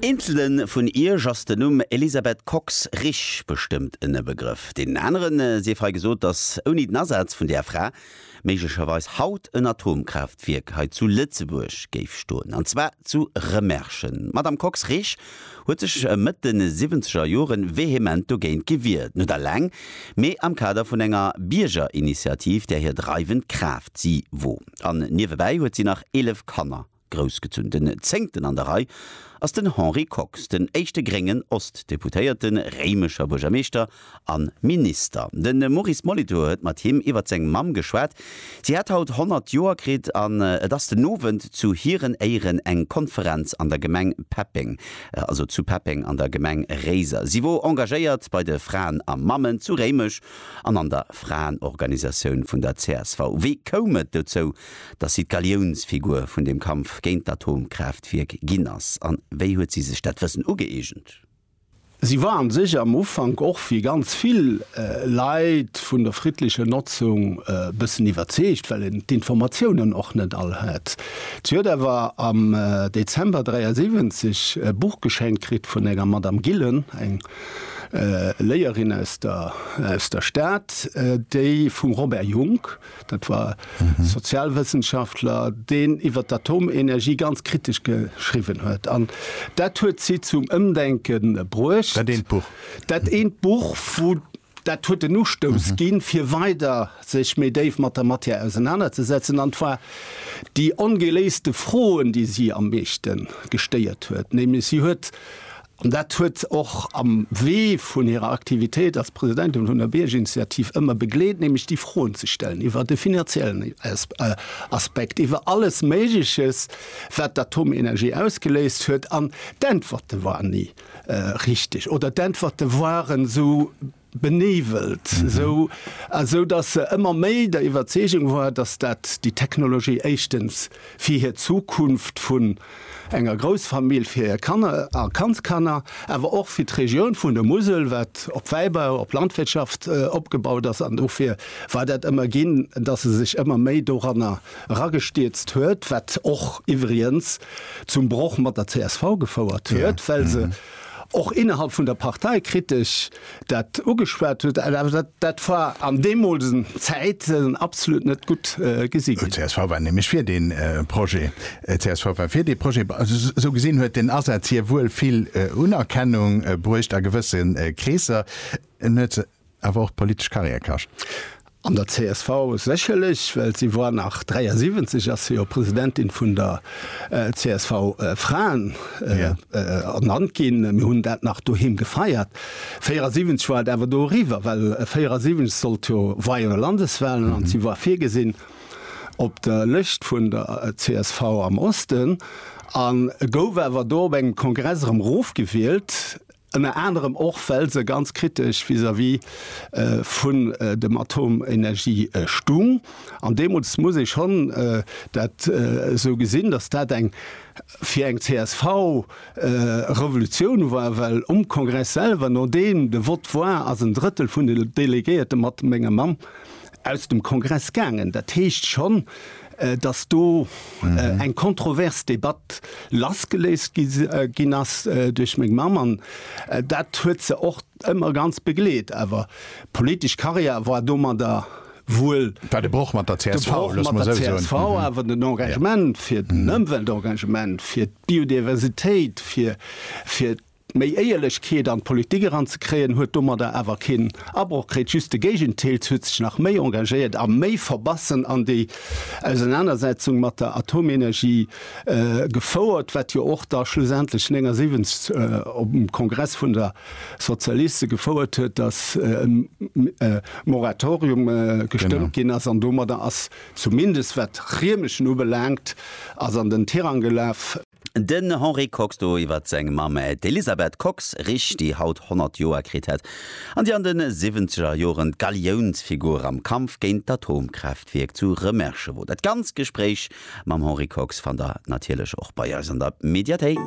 Eenzele vun iech ass den Numm Elisabeth Kox-Risch bestëmmt en Begrëff. Deenen anere sief hei gesot, datt ouni den Asaz vun där Fra méiglecherweis haut en Atomkraaftwierk hei zu Lëtzebuerg géif stoen, an zwar zu Remerschen. D'Madame Kox-Risch huet sech Mëtt de siwwenzeger Jore vehement dogéint gewier, net aleng, mee am Kader vun enger Biergerinitiativ, där hir dreiwend Kraaft si wor. An niewebäi huet si nach 11 Kanner. Groussgezunn den zéngten an der Rei ass den Henri Kox, den éischte gréngen Ost-Deputéierten, réimecher Buergermeeschter a Minister. De Maurice Molitor huet mat him iwwer seng Mamm geschwat. Si hätt haut 100 Joer kritt an et ass den Owend zu hiren Éieren eng Konferenz an der Gemeng Peppeng, also zu Peppeng an der Gemeng Réiser. Si wor engagéiert bei de Fraen a Mammen zu Réimech an an der Fraenorganisatioun vun der csv. Wéi koum et dozou? dass si d'Galiounsfigur vun dem Kampf géint d'Atomkraaftwierk ginn ass. A wéi huet si sech dat Wëssen ugëeegent? Si war a sech am Ufank och wéi ganz vill Leit vun der friddlecher Notzung e bëssen iwwerzeegt, well en d'Informatiounen och net all hat. Si huet awer am Dezember 73 e Buch geschenkt kritt vun enger Madame Gillen, eng Léierin aus der Stad, déi vum Robert Jungk, Dat war e Sozialwëssenschaftler, deen iwwer d'Atomenergie ganz kritesch geschriwwen huet. An dat huet si zum Ëmdenke bruecht. Dat eent Buch. Dat eent Buch, wou dat huet den Ustouss ginn, fir weider sech méi déif mat der Matière ausenanerzesetzen. An et war déi ongeléiste Froen, déi si am meeschte gestéiert huet, nämlech si huet An dat huet och am Wee vun hirer Aktivitéit als Presidentin vun der Biergerinitiativ ëmmer begleet, nämlech déi Froen ze stellen iwwer de finanziellen Aspekt, iwwer alles Méigleches, wat d'Atomenergie ausgeléist huet. An d'Äntwerte waren ni richteg oder d'Äntwerte waren esou, Benevelt, esou esou datt se ëmmer méi der Iwwerzeegung war, datt dat déi Technologie éischtens fir hir Zukunft vun enger Groussfamill, fir hir Kanner a Kandskanner, awer och fir d'Regioun vun der Musel, wat op Wäibau, op Landwirtschaft opgebaut ass. An dofir war dat ëmmer ginn, datt e sech ëmmer méi doranner eragestierzt huet, wat och iwwriens zum Broch mat der csv gefouert huet, well se, Och innerhalb vun der Partei kritt ech dat ugeschwat, huet awer dat war an deemolsen Zäiten absolut net gutt gesi ginn. Csv war nämlech fir dee Projet. Csv war fir dee Projet. Sou gesinn huet den Asaz hir wuel vill Unerkennung bruecht a gewësse Kreesser. En huet se. awer och politesch Karriär kascht. An der csv sécherlech, well si war nach 73 ass si jo Presidentin vun der csv Fraen ernannt ginn. Mir hunn dat nach doheem gefeiert. 74 war et awer do eriwwer, well 74 sollt jo war jo Landeswahlen an si war virgesinn op der Lëscht vun der csv am Osten a gouf awer do op engem Kongress erëm erofgewielt. Ënner anerem och well se ganz kritesch vis-à-vis vun dem Atomenergie stung. An deemools muss ee schonn dat esou gesinn, datt dat eng fir eng csv Revolutioun war, well um Kongress selwer, nodeem de Vott war, ass en Drëttel vun de Delegéierte mat mengem Mann aus dem Kongress gaangen. Dat heescht schonn, datt do eng kontrovers Debatt lassgeléist ginn ass duerch meng Mamm an dat huet se och ëmmer ganz begleet. Awer politesch Karriär war domadder wuel. War de Broch mat der csv, loosse mer esou soen. Mat der csv, awer den Engagement fir den Ëmweltengagement, fir d'Biodiversitéit, fir, Méi Éierlechkeet an d'Politik eranzekréien huet domadder awer keen Abroch kritt, just de Géigenteil, se huet sech nach méi engagéiert a méi verbassen an déi Ausenanersetzung mat der Atomenergie gefouert, wat jo och da schlussendlech 79 op dem Kongress vun der Sozialiste gefouert huet, datt e Moratorium gestëmmt ginn ass. An domadder ass, zumindest wat Riemerschen ubelaangt, ass an den Tirang gelaf. Den Henri Kox do iwwer seng Mamm, d'Elisabeth Kox-Risch, déi haut 100 Joer kritt hätt an déi an de siwwenzeger Joren d'Galiounsfigur am Kampf géint d'Atomkraaftwierk zu Remerschen wor. Dat ganz Gespréich mam Henri Kox fannt der natierlech och bei eis an der Mediathéik.